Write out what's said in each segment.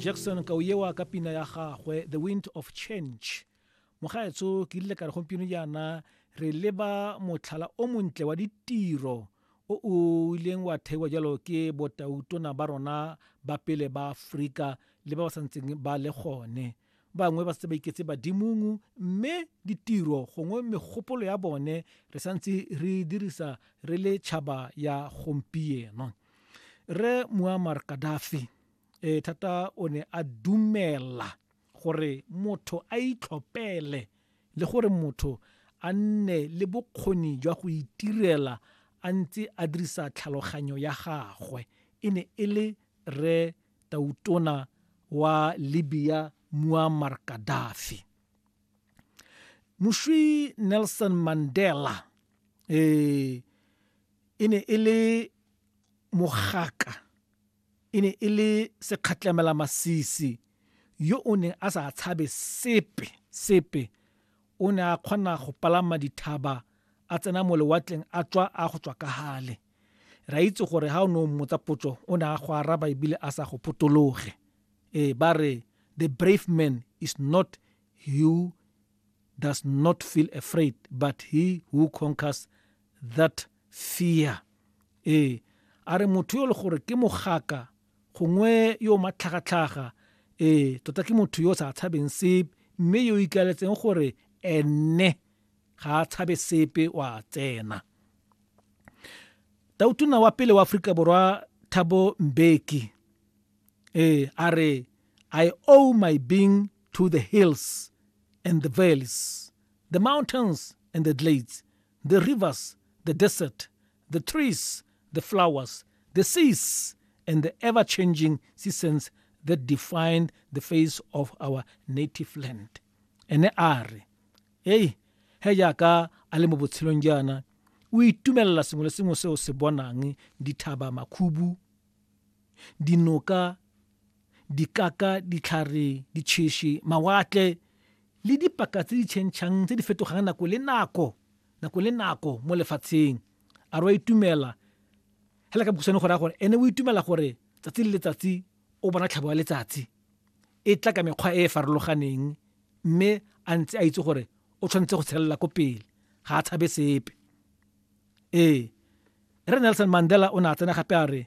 jackson ka o ewa ka pina ya gagwe the wind of change mogaetso ke rile ka re gompieno jaana re leba motlhala o montle wa ditiro o o ileng wa theiwa jalo ke botautona ba rona ba pele ba aforika le ba ba santseng ba le gone bangwe ba setse ba iketse badimong mme ditiro gongwe megopolo ya bone re santse re dirisa re le tšhaba ya gompieno Rre Muammar Gaddafi e thata o ne a dumela gore motho a itlhopele le gore motho a nne le bokgoni jwa go itirela a ntse a dirisa tlhaloganyo ya gagwe e ne e le Rre Tautona wa Libya Muammar Gaddafi. moswi nelson mandela eh, e ne e le mogaka e ne e le sekgatlhamela masisi yo o neng a sa tshabe sepe sepe o ne a kgona go palama dithaba a tsena mo lewatleng a tswa a go tswa ka gale re a itse gore ga o ne o mmotsa potso o ne a go araba ebile a sa go potologe ee ba re the brave man is not who does not feel afraid but he who conquers that fear ee a re motho yo le gore ke mogaka gongwe yo matlhagatlhaga ee tota ke motho yo o sa tshabeng sepe mme yo ikaletseng gore ene ga a tshabe sepe wa tsena tautona wa pele wa aforika borwa thabo mbeki eh a re i owe my being to the hills and the valleys the mountains and the glades the rivers the desert the trees the flowers the seas and the ever changing seasons that define the face of our native land ene a re ei he jaaka a le mo botshelong jaana o itumelela sengwe le sengwe se o se bonang dithaba makhubu dinoka dikaka ditlhare ditšheši mawatle le dipaka tse di tšhentšhang tse di fetogang nako le nako nako le nako mo lefatsheng a re wa itumela fela ka bokhutshwane go raya gore ene o itumela gore tsatsi le letsatsi o bona tlhabo ya letsatsi e tla ka mekgwa e e farologaneng mme a ntse a itse gore o tshwanetse go tshelela ko pele ga a tshabe sepe ee re nelson mandela o ne a tsena gape a re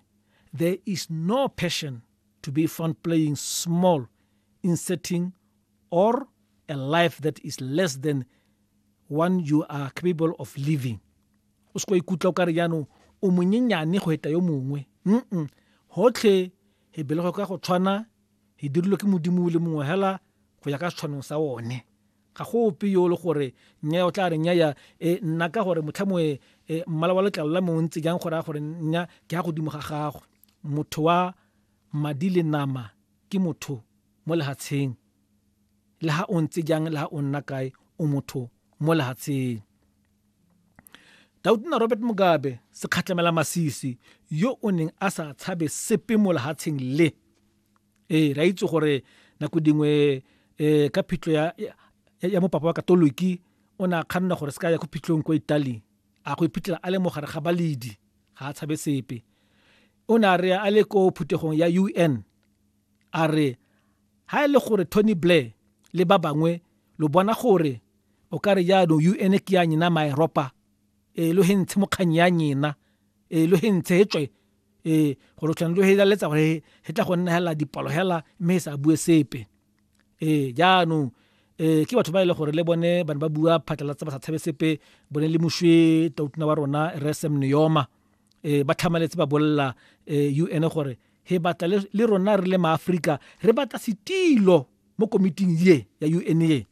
there is no passion to be found playing small in setting or a life that is less than one you are capable of living o se ko ikutlwa o ka re jaanong o monyenyane go eta yo mongwe mm gotlhe e belego ka go tshwana Di dirilwe ke Modimo o le mongwe hela go ya ka setshwanong sa one. Ga go ope yo le gore nnyaya o tla re nnyaya e nna ka gore motlhamo e e mmala wa letlalo la me o ntse jang go raya gore nnya ke ya godimo ga gagwe. Motho wa madi le nama ke motho mo lehatsheng. Le ha o ntse jang le ha o nna kae o motho mo lehatsheng. Tautona Robert Mugabe, sekgatlhamela masisi, yo o neng a sa tshabe sepe mo lehatsheng le. Ee, ra itse gore nako dingwe um ka phitlho ya, ya mopapa wa katoliki o ne a kganna gore se ka ya ko phitlhong kwa italy a go iphitlhela a le mo gare ga baledi ga a tshabe sepe o ne a re a le ko phuthegong ya un A re, Ha e le gore Tony Blair le ba bangwe lo bona gore o ka re jaanong UN ke ya nyena Maeropa, ee lo he ntshe mokganyi ya nyena, ee lo he ntshe he tswe, ee gore o tshwanetse lo he laletsa gore he tla go nna hela dipalo hela mme he sa bue sepe. Ee jaanong um ke batho ba e le gore le bone ba ne ba bua phatlalatsa ba sa tshabe sepe bone le mošwe tautona wa rona re sem neyoma um ba tlhamaletse ba bolelela um u n gore re batla le rona re le maaforika re batla setilo mo komiting ye ya un ye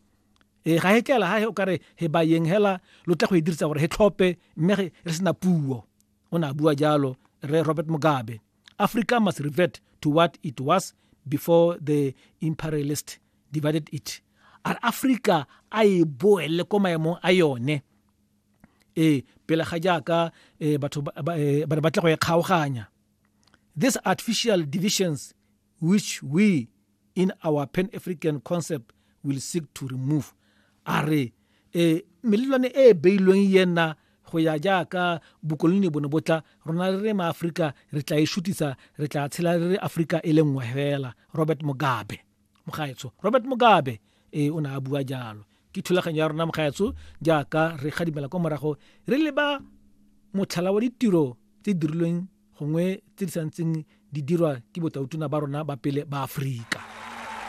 e ga e tlela ga o kare he ba yeng hela lo tla go e dirisa gore he tlhope mme re sena puo o ne a bua jalo re robert mugabe africa must revert to what it was before the imperialist divided it a africa a e boele ko maemong a yone ee pele ga jaaka eh, batho eh, ba ne ba tle go e kgaoganya These artificial divisions which we in our pan-african concept will seek to remove a re e melelwane e e beilweng yena go ya jaaka bokoloni bone botla rona re re maaforika re tla e shutisa re tla tshela re re aforika e le nngwe fela robert mugabe Mogaetsho Robert Mugabe e o ne a bua jalo. Ke thulaganyo ya rona mogaetsho jaaka re gadimela kwa morago re leba motlhala wa ditiro tse di dirilweng gongwe tse di santseng di dirwa ke botautona ba rona ba pele ba Aforika.